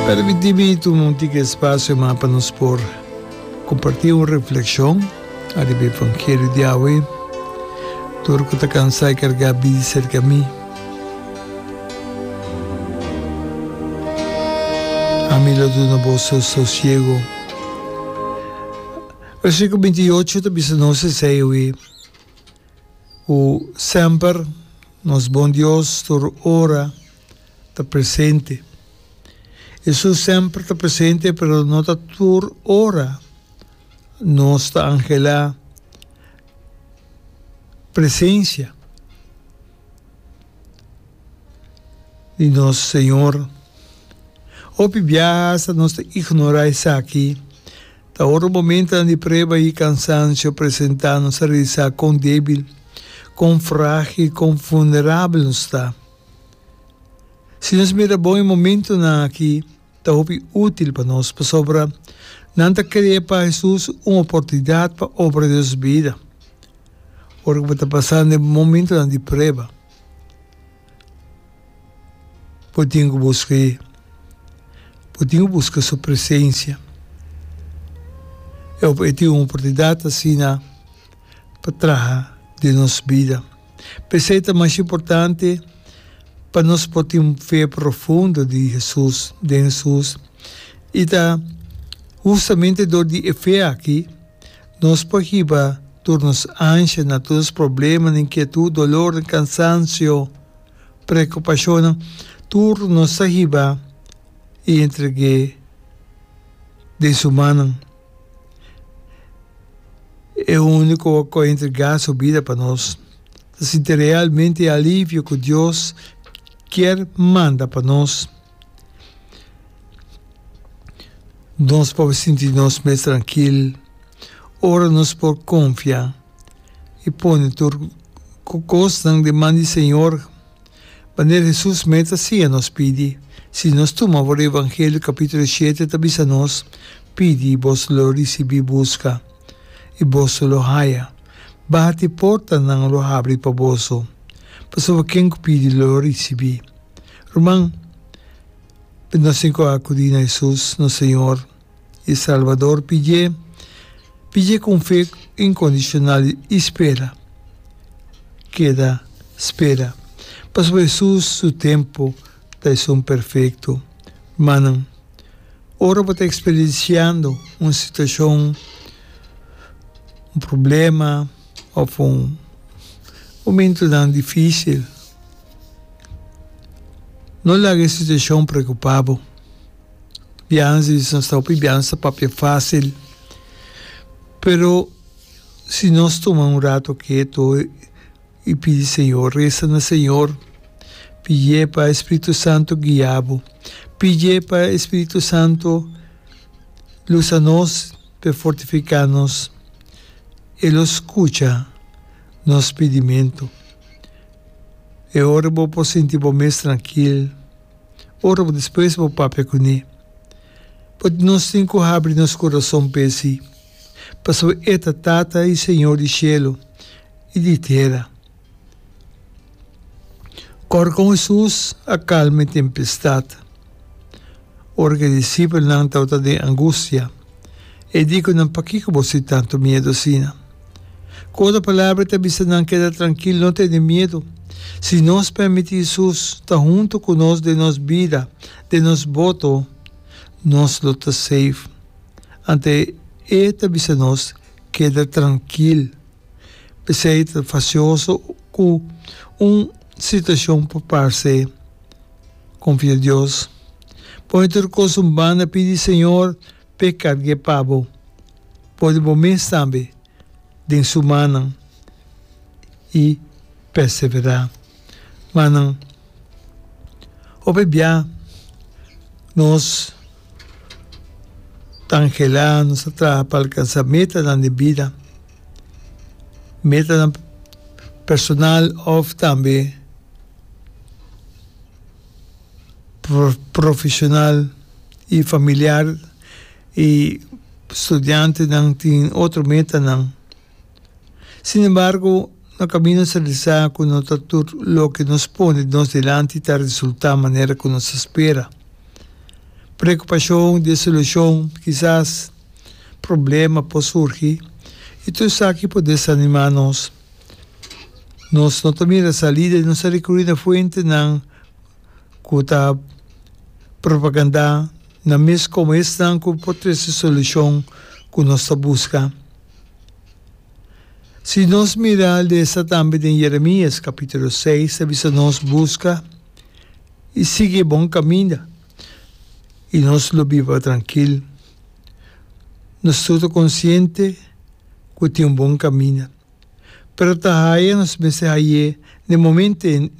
Permití mi tuma un tika espasio mas pa nos por kompartí un reflekshon ariba e evangelio di awe, Tur ku ta kansá i kargá bini serka mi. Ami lo duna boso sosiego. Versikulo binti i ocho ta bisa nos esei awe, Ku semper nos Bon Dios tur ora, ta presente. Hesus semper ta presente, pero no ta tur ora nos ta anhelá presencia di nos Señor. Hopi biaha hasta nos ta ignorá esaki. Ta ora momentonan di prueba i kansansio presentá nos ta realisá kon débil, kon frágil, kon vulnerabel nos ta. Si nos mira bon e momentunan aki ta hopi útil pa nos, pasobra nan ta krea pa Hesus un oportunidat pa obra den nos bida ora ku bo ta pasando e momentunan di prueba. Bo tin ku buska e, bo tin ku buska su presensia. E tin un oportunidat asina. pa traha den nos bida. P'esei ta mas importante pa nos por tin un fe profundo di Hesus, den Hesus, i ta hustamente dor di e fe aki nos por hiba tur nos anshanan, tur nos probleman, inkietut, dolornan, kansansio, preokupashonnan, tur nos ta hiba i entreg'é den Su mannan. E úniko wòrd ku a entregá su bida pa nos ta sinti realmente e alivio ku Dios kier manda pa nos. Nos por sinti nos mes trankil ora nos por konfia i pone tur kosnan di man di Señor. Manera Hesus mes ta siña nos pidi, si nos tuma for Evangelio capitulo shete ta bisa nos, Pidi, i boso lo ricibi, busca, i boso lo haya, bati, i porta nan lo habri pa boso. Pasobra ken cu pidi lo ricibi. Ruman, nos tin cu acudi na Hesus, nos Señor. i Salvador pidj'é, pidj'é ku un fe inkondishonal i spera. Keda spera, pasobra Hesus su tempu ta esun perfekto. Rumannan, ora bo ta eksperensiando un situashon, un problema òf un momentunan difísil, no laga e situashon preokupá bo. biaha si nos ta hopi biaha nos ta papia facil, pero si nos tuma un rato ketu y pidi Señor, resa na Señor, pidie pa e Spiritu Santo guia bo, pidie pa e Spiritu Santo lusa nos pe fortifica nos, e lo scucha nos pidimento. E ora bo por sinti bo mes trankil. Ora bo despresha bo papia kuné. But nos tin ku habri nos kurason pa e sí, pasobra e ta Tata i Señor di shelu i di tera. Kòrda kon Hesus a kalma e tempestat ora ku e disipelnan tabata den angustia. E di ku nan, Pakiko bo sin tantu miedu asina? Ku otra palabra e ta bisa nan, Keda trankil, no tene miedu. Si nos permití Hesus ta huntu ku nos den nos bida, den nos boto, nos lo ta save. Anto e ta bisa nos, Keda trankil. P'esei e ta fasioso ku un situashon por parse. Konfia Dios. Pone tur kosun banda pidi Señor p'e karg'e pa bo. Pone bo mes tambe den su mannan i perseverá. Manan, hopi bia nos ta anhelá, nos ta traha pa alkansá metanan den bida. metanan personal òf tambe pro- profeshonal i familiar. I studiantenan tin otro metanan. Sin embargo, no kaminda nos a bisa ku no ta tur loke nos pone nos dilanti ta resultá manera ku nos a spera. Preokupashon di e solushon kisas. Problema por surgi i tur esaki por desanimá nos. Nos no ta mira salida i nos ta rekurí na fuentenan ku ta propagandá nan mes komo esnan ku por trese solushon ku nos ta buska. Si nos mira lesa tambe den Yeremias kapítulo seis, ta bisa nos, Buska i sigui e bon kaminda. i nos lo biba trankil. Nos tur ta konsiente ku tin un bon kaminda, pero ta haña nos mester hañ'é den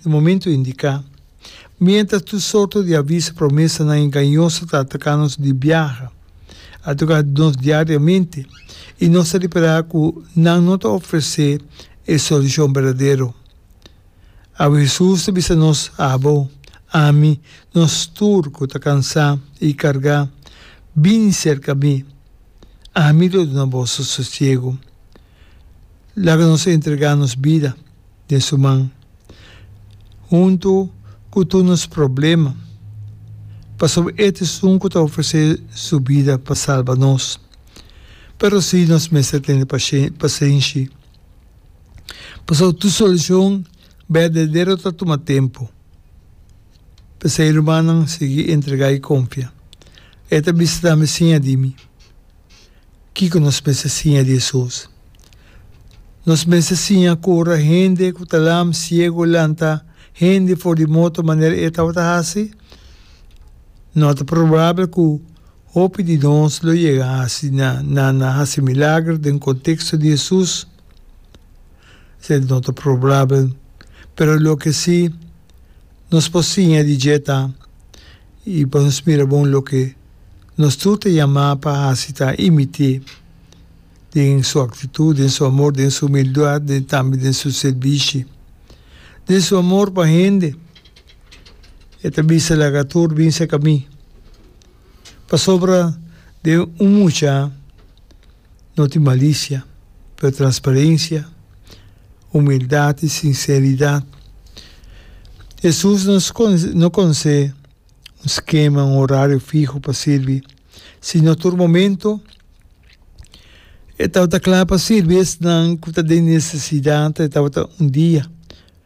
e momentu indiká. Miéntras tur sorto di aviso promesanan engañoso ta ataká nos di biaha, a toká nos diariamente i nos ta repará ku nan no ta ofresé e solushon berdadero. Awe Hesus ta bisa nos, Abo, ami, nos tur ku ta kansá i kargá, bini serka mi, ami lo duna boso sosiegu. Laga nos entregá nos bida den su man, huntu ku tur nos problema, pasobra e ta esun ku ta ofresé su bida pa salba nos. Pero sí nos mester tene pasenshi. Pasobra tur solucion berdadero ta tuma tempu. P'esei rumannan sigui entrega i confia. E ta bisa tambe di siña di mi. Kico nos mester siña di esun? Nos mester siña cura hende cu ta lam, ciego, lanta hende for di moto manera e tabata haci? No ta probabel cu. Hopi di nos lo yega asina na na hasi milager den konteksto di Hesus. Esei no ta probabel, pero loke si, nos por siña di dje ta, i pa nos mira bon loke nos tur ta yamá pa hasi ta imit'é den su aktitut, den su amor, den su humildat, den tambe den su sirbishi. Den su amor pa hende, e ta bisa laga tur bin serka mi. Pasobra den un mucha no tin malicia, pero transparencia, humildad y sinceridad. Jesús no no conse un skema, un horario fiho pa sirbi, sino tur momento e tabata cla pa sirbi esnan cu ta den necesidad, e tabata un dia.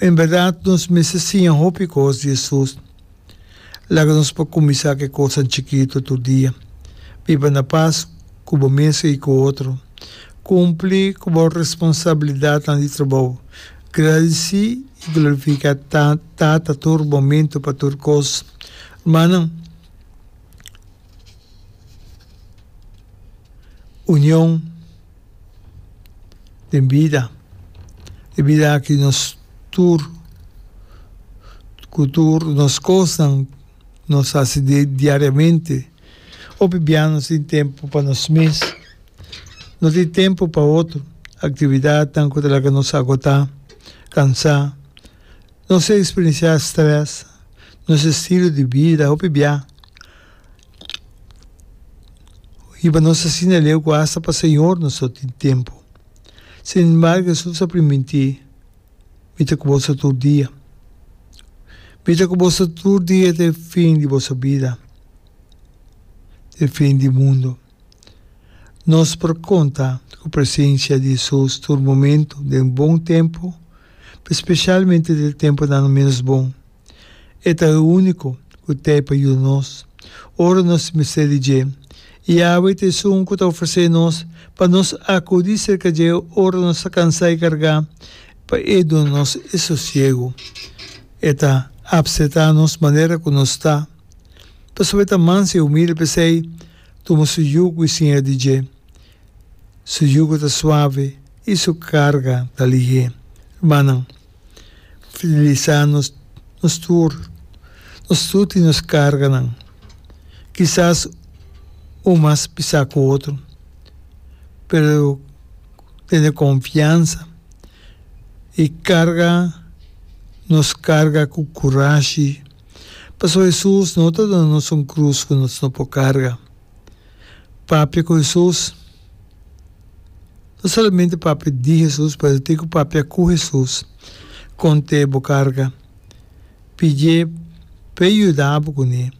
En berdad nos mester siña hopi cos di Jesús. Laga nos por cuminsa cu e cosnan chikito tur dia, Biba na pas cu bo mesun i cu otro. Cumpli cu bo responsabilidadnan di trabou. Gradici i glorifica Tata tur momento pa tur cos. Rumannan, union. den bida. E bida aki nos tur, ku tur nos kosnan nos hasi diariamente. Hopi bia nos tin tempu pa nos mes, no tin tempu pa otro, aktividatnan ku ta laga nos agotá, kansá. Nos a eksperensiá strès, nos estilo di bida hopi bia. Hiba nos asina leu ku asta pa Señor nos no tin tempu. Sin embargo Hesus a primintí, Mi ta ku boso tur dia. Mi ta ku boso tur dia te fin di boso bida, te fin di mundu. Nos por konta ku presensia di Hesus tur momentu, den bon tempu, pero spesialmente den tempunan menos bon. E ta e úniko ku t'ei pa yuda nos ora nos mester di dje, i Yahweh ta esun ku ta ofresé nos pa nos akudí serka dje ora nos ta kansá i kargá, pa e duna nos e sosiegu. E ta apsetá nos manera ku nos ta, pasobra e ta manso i humilde, p'esei, tuma su yugu i siña di dje. Su yugu ta suave i su karga ta lihé. Rumannan. Fidelisa nos nos tur, nos tut i nos karganan, kisas un mas pisá ku otro, pero tene konfiansa i karga nos karga ku kurashi, pasobra Hesus no ta duna nos un krus ku nos no por karga. Papia ku Hesus. No solamente papia di Hesus, pero tin ku papia ku Hesus. Kont'é bo karga. Pidié p'E yuda bo kuné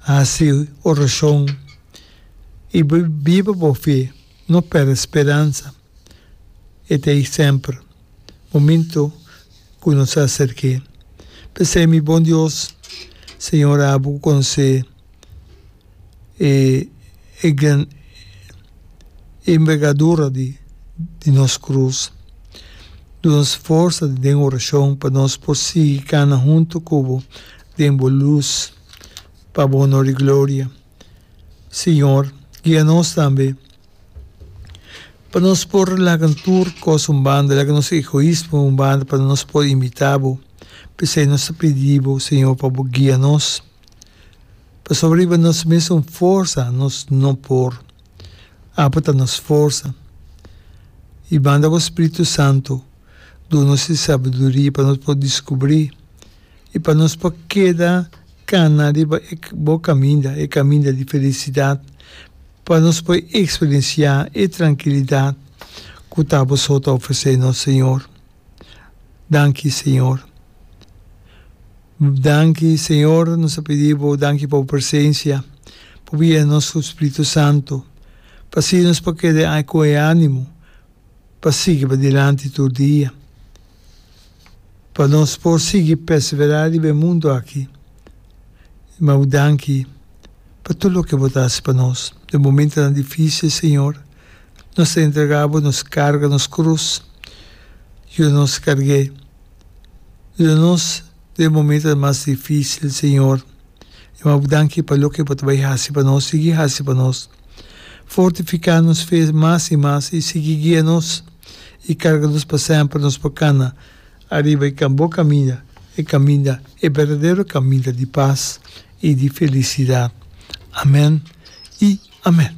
hasi orashon i biba bo fe. No pèrdè speransa. E ta ei semper, mominto ku nos ta aserk'é. P'esei mi bon Dios, Señor Abu ku konosé e e gran envergadura di di nos krus, duna nos forsa den orashon pa nos por sigui kana huntu ku bo den bo lus, pa Bo onor i gloria. Señor, guia nos tambe pa nos por laga tur cos un banda, laga nos egoismo un banda pa nos por imita Bo. P'esei nos ta pidi Bo, Señor, pa Bo guia nos. Pasobra riba nos mesun forsa nos no por. Apo ta nos forsa. I banda Bo Spiritu Santu, duna nos e sabiduria pa nos por descubri. I pa nos por keda kana riba e bo kaminda, e kaminda di felisidat, pa nos por eksperensiá e trankilidat ku ta boso ta ofresé nos, Señor. Danki, Señor. Danki, Señor, nos ta pidi Bo danki pa Bo presensia, pa Bo yena nos ku Spritu Santu, pa así nos por keda ku e ánimo pa sigui padilanti tur dia, pa nos por sigui perseverá riba e mundu aki. I mau danki pa tur loke Bo ta hasi pa nos. Den momentonan difísil, Señor, nos ta entregá Bo nos karga, nos krus. Yuda nos karg'é. Yuda nos den e momentonan mas difísil, Señor. I mau danki pa loke Bo ta bai hasi pa nos, sigui hasi pa nos. Fortifiká nos fe mas i mas i sigui guia nos i karga nos pa semper nos por kana ariba e bon kaminda, e kaminda, e berdadero kaminda di pas i di felisidat. Amèn i amèn.